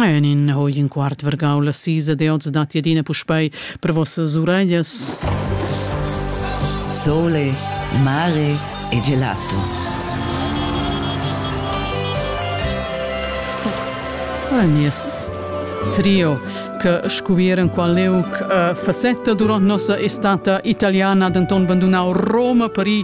En in hoi in quart vargau la sisa de oz datti adina puspei per vossas ureglas. Sole, mare e gelato. Ah, nies trio che scuvieren qua leuc uh, facetta durant nossa estata italiana denton bandunau Roma, Paris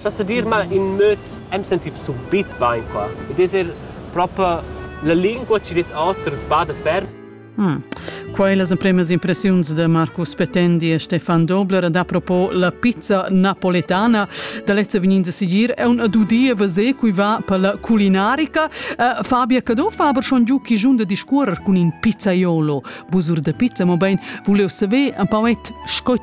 Sta sa dir mal in möd am sentiv subit bain qua. Ed es er propa la lingua chi des oters bada ferm. Mm. Quai las empremas impressiuns de Marcus Petendi e Stefan Dobler ad apropos la pizza napoletana da lezza vegninda sigir è un adudia vase cui va per la culinarica. Uh, Fabia Cadò fa aber schon giù chi giun da discuorer cun in pizzaiolo. Busur de pizza, mo ben, volevo saver un pauet scot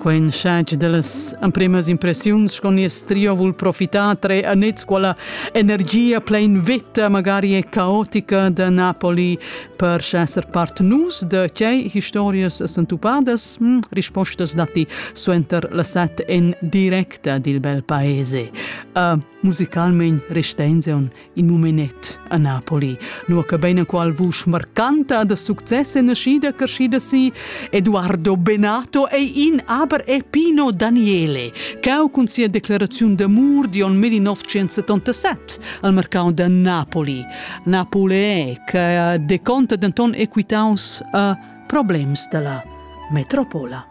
Quei insatgi dallas empremas impressiuns con nies trio vul profitar tre annets quella energia plein veta magari e caotica da Napoli per esser part nus de tgei historias sentupadas? Hm, rispostas datti suenter la set en directa dil bel paese. Uh, musicalment restein in mumenet a Napoli, nua che beinaqual vusch marcanta da success e naschida crescida si, Eduardo Benato ei in aber e Pino Daniele, cau cun sia declaraziun d'amur di on 1977 al mercau da Napoli. Napoli è che deconta denton equitaus a problems della metropola.